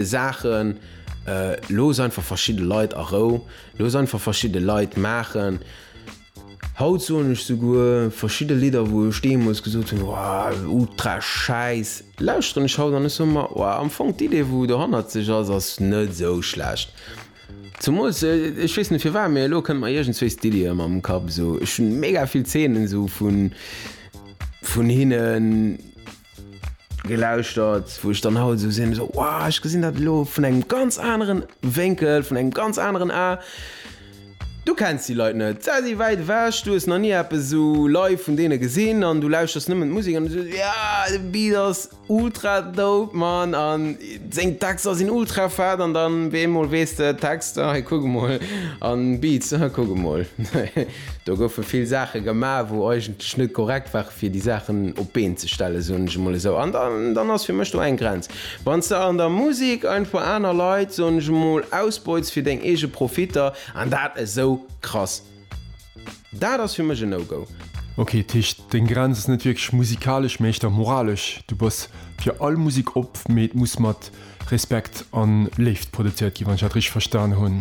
Saachen, looss einfach verschidde Leit a Rou, looss einfach verschidde Leit maachen. Haut soen ech souguer verschidde Lidder, wou ech deemools gesot hunn, Wow, ultra schäiss, lauschteren ech haut an ech soe mer, Wow, am Fong d'Idee, wou dohannert sech ass, ass net esou schlecht. Zemools, ech weess net firwat, mee elo kënnt mer iergendswéi Stylien ëmmer am Kapp. Esou, ech hunn mega vill Zeenen esou vun, vun hinnen. Gelauschtert, wou ech dann haut esou sinn, esou wow, ech gesinn dat elo vun engem ganz anere Wénkel, vun engem ganz aneren A. Du kenns déi Leit net, se si wäit ewech, du hues nach ni eppes esou live vun deene gesinn an du lauschters nëmmen d'Musek an du sees, ja, de Beat ass ultra dope, Mann, an seng Texter sinn ultra fett an dann op eemol weess de, Texter, hei kuck emol, an Beats, hei kuck emol. Do goufe vill Saache gemaach, wou eigentlech net korrekt ware fir déi Saachen op d'Been ze stellen, soen ech emol esou. An dann ass fir mech do eng Grenz. Wann s de an der Musek einfach aner Leit, soen ech emol, ausbeutst fir deng eege Profitter, an dat esou krass, dat ass fir mech en No-Go. Ok, dat heescht deng Grenz ass net wierklech musikalesch, mee éischter moralesch. Du bass fir all Musek op, mee et muss mat Respekt an Léift produzéiert ginn, wann ech dat richteg verstan hunn.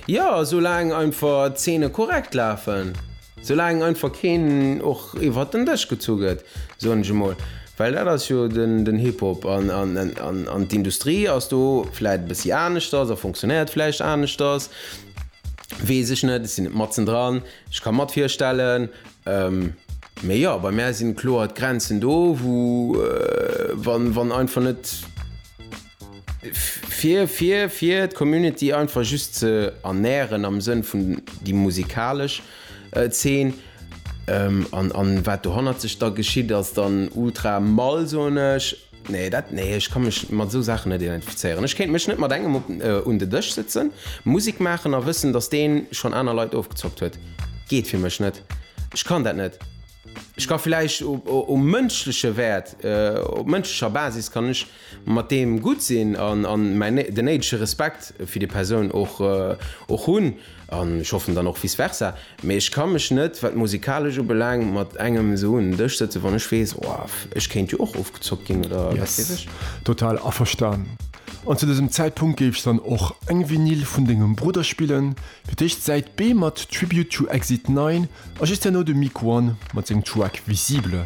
Jo, sou laang einfach d'Zeene korrekt lafen, sou laang einfach keen och iwwert den Dësch gezu gëtt, soen ech emol, well dat ass jo den Hip-Hop. An d'Industrie ass do vläit e bëssi aneschters a funktionéiert vläicht aneschters, weess ech net, ech sinn net matzen dran. Ech ka mat virstellen, Mee jo, bei mär sinn kloer d'Grenzen do, wou wann einfach net fir fir fir d'Community einfach just ze ernären am Sënn vun déi musikalesch Zeen an an wat dohannert sech da geschitt ass dann ultra mall, soen ech. Nee dat nee, ech ka mech mat esou Saachen net identifizéieren. Ech kéint mech net mat engem op un de Dësch sëtzen, Musek maachen a wëssen, datt deen schonn aner Leit ofgezockt huet. Geet fir mech net. Ech kann dat net. Ech ka villäicht um mënschleche Wäert, op mënschlecher Basis kann ech mat deem gutt sinn an an mäin den néidege Respekt fir déi Persoun och och hunn. An ech hoffen dann och vice versa. Mee ech ka mech net, wat d'Musikalesch ubelaangt, mat engem esou un en Dësch sëtzen, wann ech weess, oh, ech kéint jo och ofgezockt ginn oder wat weess ech. Yes, total averstan. An zu dësem Zäitpunkt géif ech dann och eng Vinyl vun dengem Brudder spillen, fir d'éischt d'Säit B mat Tribute to Exit 9 a just herno de Miquon mat sengem Track Visible.